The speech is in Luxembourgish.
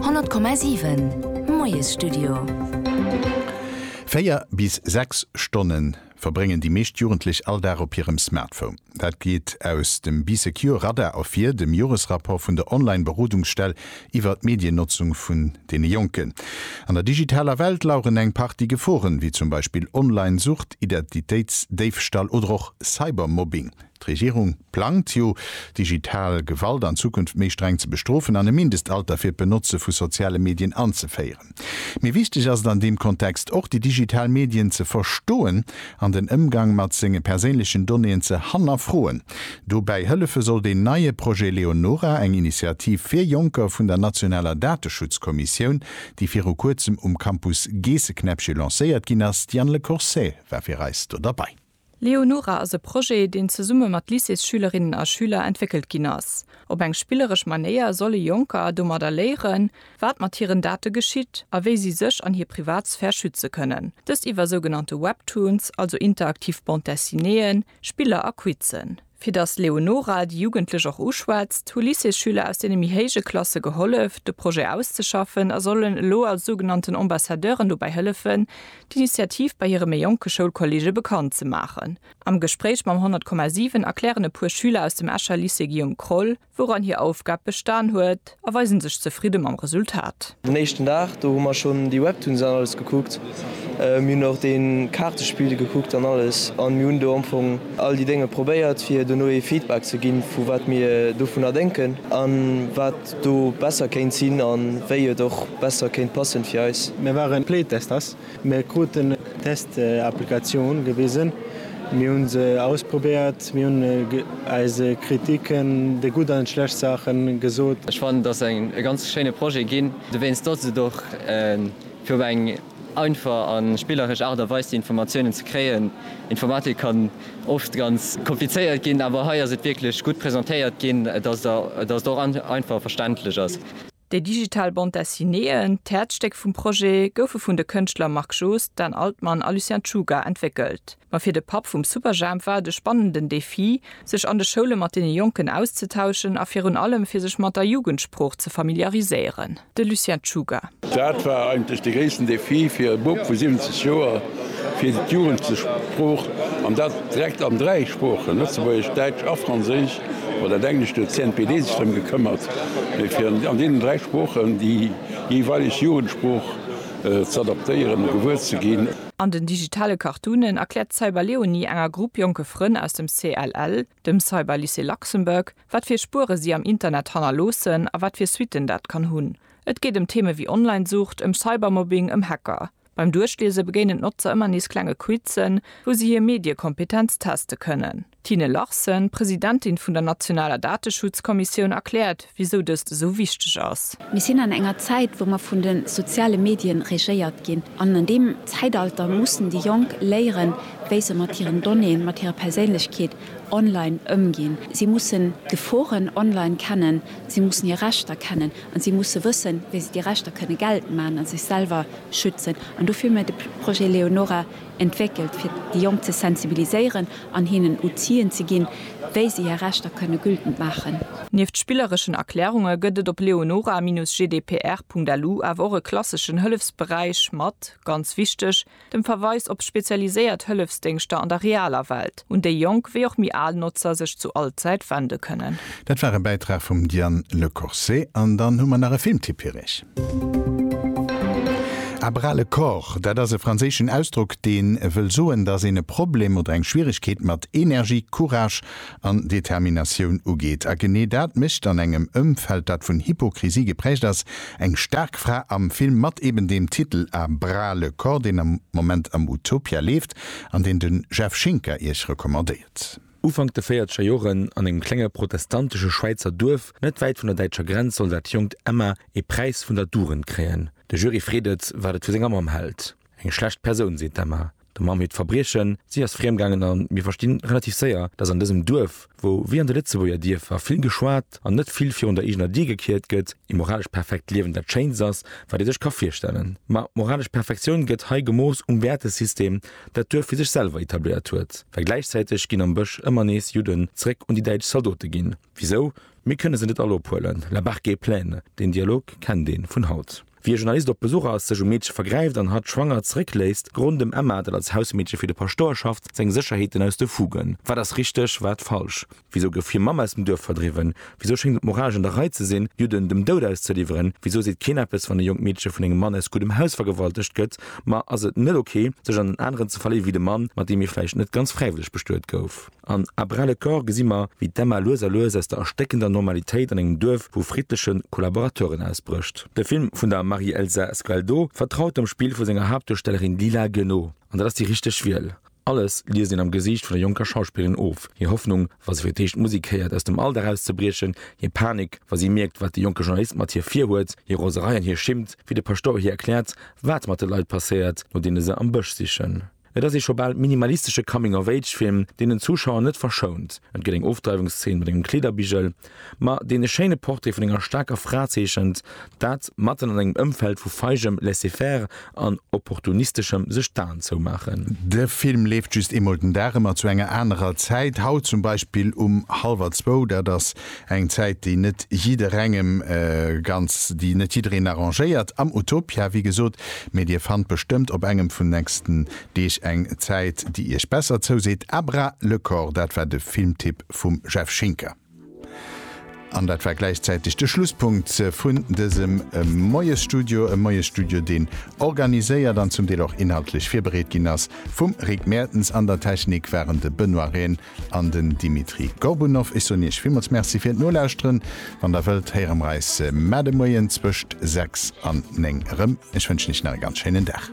100,7 Moiesstudio. Véier bis sechs Stonne verbréngen déi meescht Jugendlech all Dag op hirem Smartphone. Dat geet aus dem Bee Secure Radar ervir, dem Joresrapport vun der Online-Berodungsstell iwwer d'Mediennotzung vun deene Jonken. An der digitaler Welt laueren eng Partie Geforen, wéi zum Beispill Online-Sucht, Identitéitsdéifstall oder och Cybermobbing. D'Regierung plangt jo, digital Gewalt an Zukunft méi streng ze bestrofen an e Mindestalter fir d'Benotze vu soziale Medien anzeféieren. Mee wichteg ass et an deem Kontext och, déi digital Medien ze verstoen an den Ëmgang mat senge perséinlechen Donnéeën ze hannerfroen. Dobäi hëllefe soll deen neie Projet Leonora, eng Initiativ fir Jonker vun der nationaler Dateschutzkommissioun, déi viru Kuerzem um Campus Geesseknäppche lancéiert ginn ass. D'Diane Lecourcey war fir eis do derbei. Leonora ass e Projet, deen zesumme mat Lycéesschülerinnen a schüler entwéckelt ginn ass. Op eng spilleresch Manéier solle Jonker domadder léieren, wat mat hiren Date geschitt a wéi si sech an hir Privatsphär schütze kënnen. Dëst iwwer sougenannte Webtoons, also interaktiv Bande-dessinéeën, Spiller a Quizzen. Fir datt d'Leonora déi Jugendlech och uschwätzt, hu Lycéesschüler aus deene méi héije Klasse gehollef, de Projet auszeschaffen a sollen elo als sougenannten Ambassadeuren dobäi hëllefen, d'Initiativ bei hire méi jonke Schoulkolleege bekannt ze maachen. Am Gespréich mam 100,7 erklären e puer Schüler aus dem Escher Lycée Guillaume Kroll, wouran hir Aufgab bestan huet, a weisen sech zefridde mam Resultat. Den éischten Dag, do hu mer schonn déi Webtoons an alles gekuckt. Mir hunn och dee Kaartespill gekuckt an alles, a mir hunn do am Fong all déi Dénge probéiert, fir dono ee Feedback ze ginn, vu wat mir dovunner denken a wat do besser kéint sinn a wéi et och besser kéint passen fir eis. Mir waren Playtesters Mir kruten eng Test-Applikatioun gewisen, mir hu se ausprobéiert, mir hunn eise Kritiken déi gutt an déi schlecht Saache gesot. Ech fannen, et ass e ganz schéine Projet ginn, dowéinst datt et och fir op eng einfach a spilleresch Aart a Weis déi Informatiounen ze kréien. Informatik kann oft ganz komplizéiert ginn, awer hei ass et wierklech gutt presentéiert ginn, datt et och einfach a verständlech ass. Déi digital Bande Dessinéeën, d'Häerzstéck vum Projet, goufe vun de Kënschtler Marc Joost, Dan Altmann a Lucien Czuga entwéckelt. Ma fir de Papp vum Superjhemp war et e spannenden Defi, sech an de Schoule mat deene Jonken auszetauschen a virun allem fir sech mat der Jugendsprooch ze familiariséieren. De Lucien Czuga. Dat war eigentlech de gréissten Defi fir e Bub vu 70 Joer, fir d'Jugend ze Sprooch, an dat direkt an dräi Sproochen, Lëtzebuergesch, Däitsch a Franséisch, oder an Englesch, do huet d'CNPD sech drëm gekëmmert, fir an deenen dräi Sproochen déi jeeweileg Jugendsprooch z'adaptéieren a gewuer ze ginn. An den digitale Cartoonen erkläert d'Cyberleonie enger Grupp jonke Frënn aus dem CLL, dem Cyberlycée Luxembourg, wat fir Spuere si am Internet hannerloossen a wat fir Suitten dat kann hunn. Et geet ëm Theeme wéi Online-Sucht, ëm Cybermobbing, ëm Hacker. Beim Duerchliese begéinen d'Notzer ëmmer nees klenge Quizzen, wou si hir Mediekompetenz teste kënnen. D'Tine Larsen, Presidentin vun der nationaler Dateschutzkommissioun, erkläert, wisou dëst esou wichteg ass. Mir sinn an enger Zäit, wou mer vun de soziale Medien regéiert ginn. An an deem Zäitalter mussen déi Jonk léieren, wéi se mat hiren Donnéeën, mat hirer Perséinlechkeet online ëmginn. Si mussen d'Geforen online kennen, si mussen hir Rechter kennen a si musse wëssen, wéi se déi Rechter kënne geltend maachen a sech selwer schützen an dofir hu mir de Projet Leonora entwéckelt, fir déi Jonk ze sensibiliséieren an hinnen Outien ze ginn, wéi si hir Rechter kënne gültend maachen. Nieft spillereschen Erklärunge gëtt et op leonora-gdpr.lu awer och e klasseschen Hëllefsberäich mat, ganz wichteg, dem Verweis op spezialiséiert Hëllefsdéngschter an der realer Welt. un déi jonk wéi och méi al Notzer sech zu all Zäit wende kënnen. Dat war e Bäitrag vum Diane Lecourcé. An dann hu mer nach e Filmtipp fir iech. À bras le corps, dat ass e franséischen Ausdrock, dee wëll soen, datt een e Problem oder eng Schwieregkeet mat Energie, Courage an Determinatioun ugeet. A genee dat mécht an engem Ëmfeld, dat vun Hypokrisie geprägt ass, eng staark Fra am Film mat eben deem Titel A bras le corps, deen am Moment am Utopia leeft. an deen den Jeff Schinker iech recommandéiert. Ufank de véierzeger Joren, an engem klenge protestantesche Schwäizer Duerf net wäit vun der däitscher Grenz, soll dat jonkt Emma ee Präis vun der Dugend kréien. De Jury freet et, wat et vu senger Mamm hält. Eng schlecht Persoun, seet d'Emma. Der Mamm hiert Verbriechen, Si ass friemgaangen an mir verstinn relativ séier, dass an dësem Duerf, wou wéi an de Lëtzebuerger Dierfer vill geschwat an net vill virun der eegener Dier gekiert gëtt, ee moralesch perfekt Liewen dat Schéinst ass, wat ee sech ka virstellen. Ma moralesch Perfektioun gëtt hei gemooss um Wäertesystem, dat d'Duerf fir sech selwer etabléiert huet, well gläichzäiteg ginn am Bësch ëmmer nees Judden zeréck un déi däitsch Zaldote ginn. Wisou? Mir kënne se net all ophuelen, la barque est pleine, deen Dialog kennt ee vun haut. Wéi e Journalist op Besuch ass, sech um Meedche vergräift an hatt schwanger zeréckléisst, gerooden dem Emma, dat als Hausmeedche fir de Paschtouer schafft, seng Sécherheeten aus de Fugen. Wat ass richteg, wat falsch? Wisou gouf hir Mamm aus dem Duerf verdriwwen? Wisou schéngt et moralesch an der Rei ze sinn, Judden dem Doud auszeliwweren? Wisou seet keen eppes, wann e jonkt Meedche vun engem Mann aus guddem Haus vergewaltegt gëtt? Ma ass et net ok, sech an en aneren ze verléiwe wéi de Mann, mat deem ee vläicht net ganz fräiwëlleg bestuet gouf? An À bras le corps gesi mer, wéi d'Emma lues a lues aus der erstéckender Normalitéit an engem Duerf vu friddleche Kollaborateuren ausbrécht. De Film vun der Marie-Elsa Sgualdo vertraut dem Spill vu senger Haaptduerstellerin Lila Gueno. An dat ass déi richteg Wiel. Alles liest een am Gesiicht vun der jonker Schauspillerin of, hir Hoffnung, wa se fir d'éischt d'Musek héiert, aus dem Alldag auszebriechen, hir Panik, wa si mierkt, wat de jonke Journalist mat hir virhuet, hir Roserei an hir Schimmt, wéi de Paschtouer hir erkläert, wat mat de Leit passéiert, no deene se am Bësch sichen. Et ass ee scho bal minimalistesche Coming-of-Age-Film, deen den Zuschauer net verschount. Et gëtt eng Ofdreiwungsszeen mat engem Kleederbigel, ma deen e schéine Portrait vun enger staarker Fra zeechent, dat matten an engem Ëmfeld vu feigem Laisser-faire an opportunisteschem Sech-d'Aen-zou-maachen. De Film leeft just eemol den Dag, ëmmer zu enger anerer Zäit, haut zum Beispill um hallwer zwou. Dat ass Eng Zäit, déi net jidderengem ganz, déi net jiddereen arrangéiert am Utopia, wéi gesot. Mee Dir fannt bestëmmt op engem vun nächsten Deeg eng Zäit, déi Iech besser zouseet. À bras le corps, dat war de Filmtipp vum Jeff Schinker. An dat war gläichzäiteg de Schlusspunkt vun dësem Moiesstudio. E Moiesstudio, deen organiséiert an zum Deel och inhaltlech virbereet ginn ass vum Rick Mertens. An der Technik waren de Benoît Rehn An den Dimitri Gorbunov. Ech soen Iech villmools Merci fir d'Nolauschteren. Wann Der wëllt, héiere mer eis mar de Moien zwëscht 6 an 9 erëm. Ech wënschen Iech nach e ganz schéinen Dag.